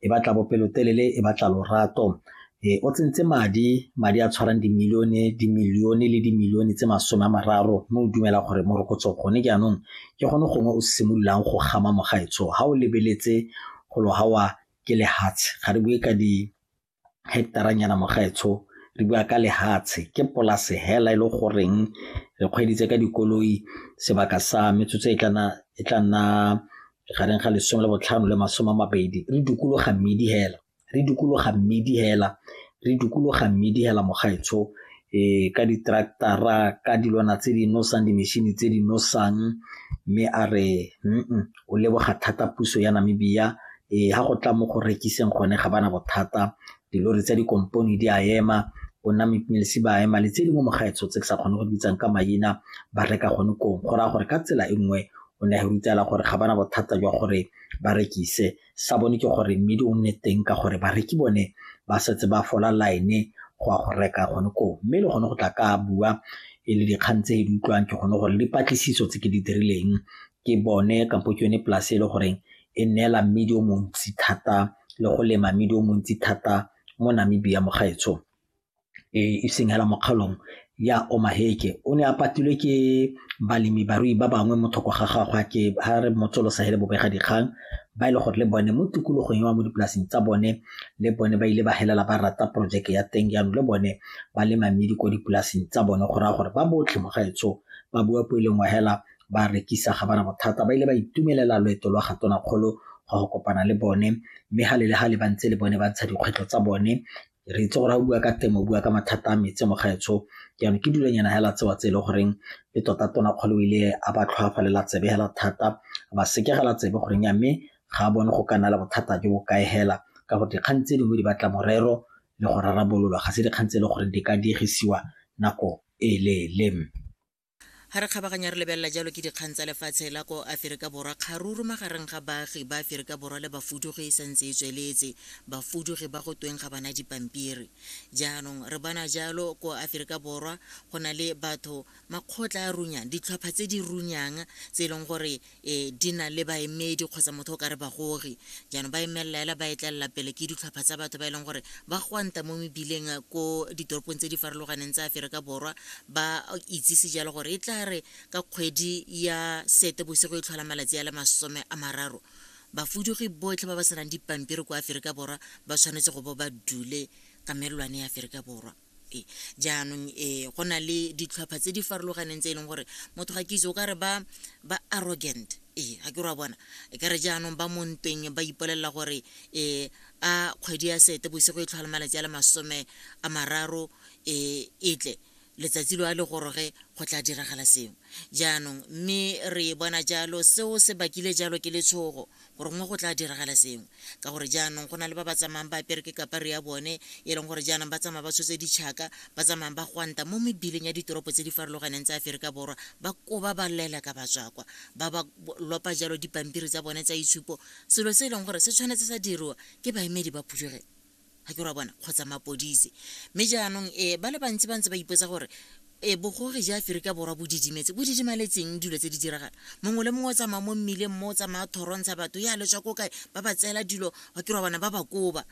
e batla bopelotelele e batla lorato e o tsentse madi madi a tshwarang dimilione dimilione le dimilione tse masome a mararo mme o dumela gore morokotso gone jaanong ke gone gongwe o simololang go gama mogaetsho ga o lebeletse go lo gawa ke lehatshe ga re bue ka di hectaranyana mogaetsho re bua ka lehatshe ke polase hela e le goreng re kgweditse ka dikoloi sebaka sa metsotso e tla nna gareng ga lesome le botlhano le masome a mabedi re dukologa mmedi hela re dukologa mmedi hela re dukologa mmedi hela mogaetsho e ka ditraktara ka dilwana tse di nosang dimešhini tse di nosang mme a re mm o leboga thata puso ya namibia e ga go tla mo go rekiseng gone ga bana bothata dilori tsa dikompone di a ema bona mepilisi ba ema le tse di mo mogaetsho tse ke sa kgone go bitsang ka maina ba reka gone kong go raya gore ka tsela e nngwe o ne a rutela gore ga bana bothata jwa gore ba rekise sa bone ke gore mmidi o nne teng ka gore bareki bone ba setse ba fola line go ya go reka gone koo mme le gone go tla ka bua e le dikgang tse e di utlwang ke gone gore dipatlisiso tse ke di dirileng ke bone kampo ke yone polase e le goreng e neela mmidi o montsi thata le go lema mmidi o montsi thata mo Namibia mo gaetsho e seng hela mo kgaolong ya Omaheke. O ne a patilwe ke balemi barui ba bangwe mo thoko ga gagwe ke ha re motsolosa hele bobega dikgang ba e le gore le bone mo tikologong ya mo dipolaseng tsa bone le bone ba ile ba helela ba rata porojeke ya teng jaanong le bone ba lema mmidi ko dipolaseng tsa bone go raya gore ba botlhe mo gaetsho ba bua po e leng wa hela ba rekisa ga bana bothata ba ile ba itumelela loeto lwa ga tonakgolo go go kopana le bone mme ga le le ga le ba ntse le bone ba ntsha dikgwetlho tsa bone re itse gore ga o bua ka temo o bua ka mathata a metse mo gaetsho jaanong ke dulanyana hela tsewa tse e leng goreng le tota tona kgolo ile a ba tlhoafalela tsebe hela thata ba sekegela tsebe goreng ya mme ga a bone go ka nna le bothata jo bo kae hela ka gore dikgang tse dingwe di batla morero le go rarabololwa ga se dikgang tse e leng gore di ka diegisiwa nako e leele Ha re kgabaganya re lebelela jalo ke dikgang tsa lefatshe la ko Aferika Borwa, kgaruru magareng ga baagi ba Aferika Borwa le bafudugi e santse e tsweletse, bafudugi ba go tweng ga bana dipampiri. Jaanong re bona jalo ko Aferika Borwa go na le batho, makgotla a runyang, ditlhopha tse di runyang tse e leng gore e di na le baemedi kgotsa motho o ka re bagogi jaanong ba emelela ela ba etlelela pele ke ditlhopha tsa batho ba e leng gore ba gwanta mo mebileng eh, ko ditoropong tse di farologaneng tsa aferika borwa ba itsise jalo gore e tla re ka kgwedi ya sete bosigo e tlhola malatsi a le masome a mararo bafudugi botlhe ba ba senang dipampiri kwa aferika borwa ba tshwanetse go bo ba dule ka melelwane ya aferika borwa jaanong um go na le ditlhwapha tse di farologaneng tse e leng gore motho ga ke itse o ka re ba ba arrogant ee ga ke re wa bona e ka re jaanong ba mo ntweng ba ipolelela gore um a kgwedi ya sete bosigo e tlhwala malatsi a le masome a mararo um e tle letsatsi lo a le goroge go tla diragala sengwe jaanong mme re e bona jalo seo se bakile jalo ke letshogo gorongwe go tla diragala sengwe ka gore jaanong go na le ba ba tsamayang ba apere ke kapare ya bone e leng gore jaanong ba tsamaya ba tshotse ditšhaka ba tsamayang ba gwanta mo mebileng ya ditoropo tse di farologaneng tsa aferika borwa ba koba ba lela ka batswakwa ba ba lopa jalo dipampiri tsa bone tsa itshupo selo se e leng gore se tshwanetse sa diriwa ke baemedi ba phuduge ga ke ra bona kgotsa mapodise mme jaanong um ba le bantsi ba ntse ba ipotsa gore e bogogi ja aferika borwa bo didimetse bo didimaletseng dilo tse di diragala mongwe le mongwe o tsamaya mo mmileng mo o tsamaya thorontsha batho ya letswa ko kae ba ba tseela dilo ga ke ra bona ba ba koba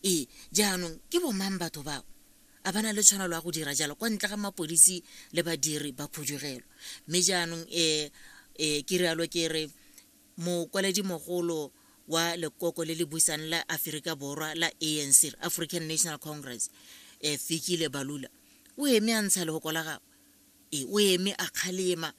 ee jaanong ke bomang batho bao a bana le tshwanelo ya go dira jalo kwa ntle ga mapodisi le badiri ba khudugelwa mme jaanong um um ke rialo ke re Mokwaledi-mogolo wa lekoko le le busang la Aferika Borwa la ANC, African National Congress, eh, Fikile Balula, o eme a ntsha lehoko la gagwe. E, o eme a kgalema.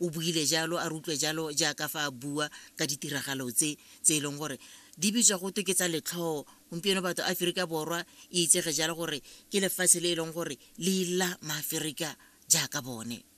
O buile jalo, a re utlwe jalo jaaka fa a bua ka ditiragalo tse tse e leng gore di bitswa go twe ke tsa letlhoo. Gompieno batho Aferika Borwa e itsege jalo gore ke lefatshe le e leng gore le ila Maaferika jaaka bone.